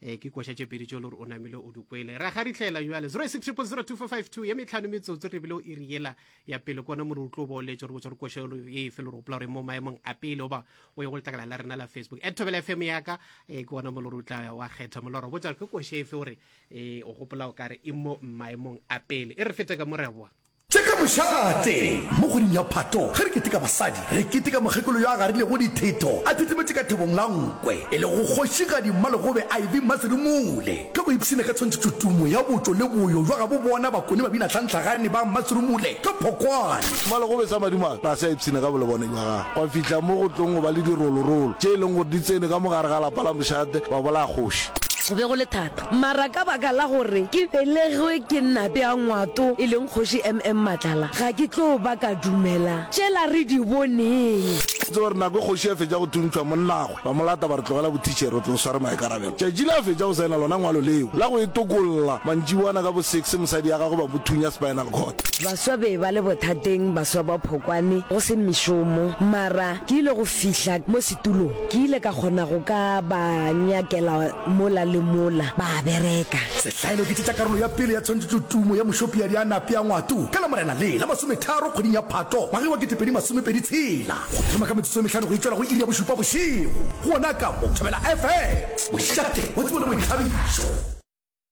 e ke koša tše pedi tšo le gore o namile o di kwele ra ga ritlhela jale 06000245 ye metlhano metsotso re bile o iri yela ya pele kona more o tlo ba o letse gore botsa gore košelo ye efe le gore opela gore mo maemong a pele oba o ye go letlakala la rena la facebook at thobela fm yaka e ke gona mo le gore o tla wa kgetha molora botsa ke koše efe gore e o gopola o kare e mo maemong a pele e re fete ka moreboa Tše ka mošate. Mo kgweding ya Phato, ge re keteka basadi, re keteka mokgekolo yo a garilego dithetho a thithimetše ka thobong la nkwe, e lego Kgošigadi Mmalegobe Ivy Mmaserumule. Ge go ipshina ka tshwantšhetšo tumo ya botšo le boyo bja gabo bona bakone babina tlhantlhagane ba Mmaserumule ka phokwane. Mmalegobe sa madimabe ga se a ipshina ka bolebone bja gagwe, gwa fihla mo go tlong go ba le dirolorolo tše e leng gore di tsene ka mo gare ga lapa la mošate ba bolaya kgoši. Go be go le thata. Mara ka baka la gore ke belegwe ke Nna bea Ngwato e leng Kgoši MM Matlala, ga ke tlo ba ka dumela tšela re di boneng. Ke tseba gore nako e Kgoši a fetša go thuntšhwa monnagwe, ba mo lata ba re tlogela bothitšhere, o tlo sware maikarabelo. Tšatši le a fetša go saena lona ngwalo leo la go e tokolla, mantšiboana ka bo six mosadi ya gagwe ba mo thunya spinal cord. Baswa be ba le bothateng, baswa ba phokwane, go se mešomo. Mara ke ile go fihla mo. Tulo, Ke ile ka kgona go ka ba nyakela mola le mola, ba a bereka. Sehlaelo, Ke tšetša karolo ya pele ya tshwantšhetšo Tumo ya Mošopiadi a Nape a Ngwatu ka Lamorena le la masometharo kgweding ya Phato ngwageng wa kete pedi masome pedi tshela go thoma ka metsotso e mehlano go itšwela go iri ya bošupa bošego gona ka mo Thobela FM, mošate wa tsebo le boithabišo.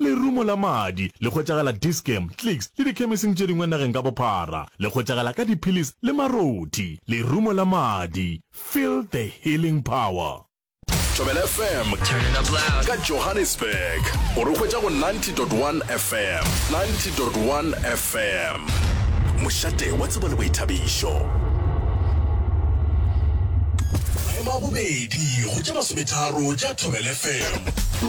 Lerumo la madi le hwetšagala Dischem, Clicks le dikhemising tše dingwe nageng ka bophara. Le hwetšagala ka diphillis le marothi. Lerumo la madi, feel the healing power. Thobela FM ka Johannesburg o re hwetša go 90.1 FM, 90.1 FM, mošate wa tsebo le boithabišo. Maemo a bobedi go tše masometharo tša Thobela FM.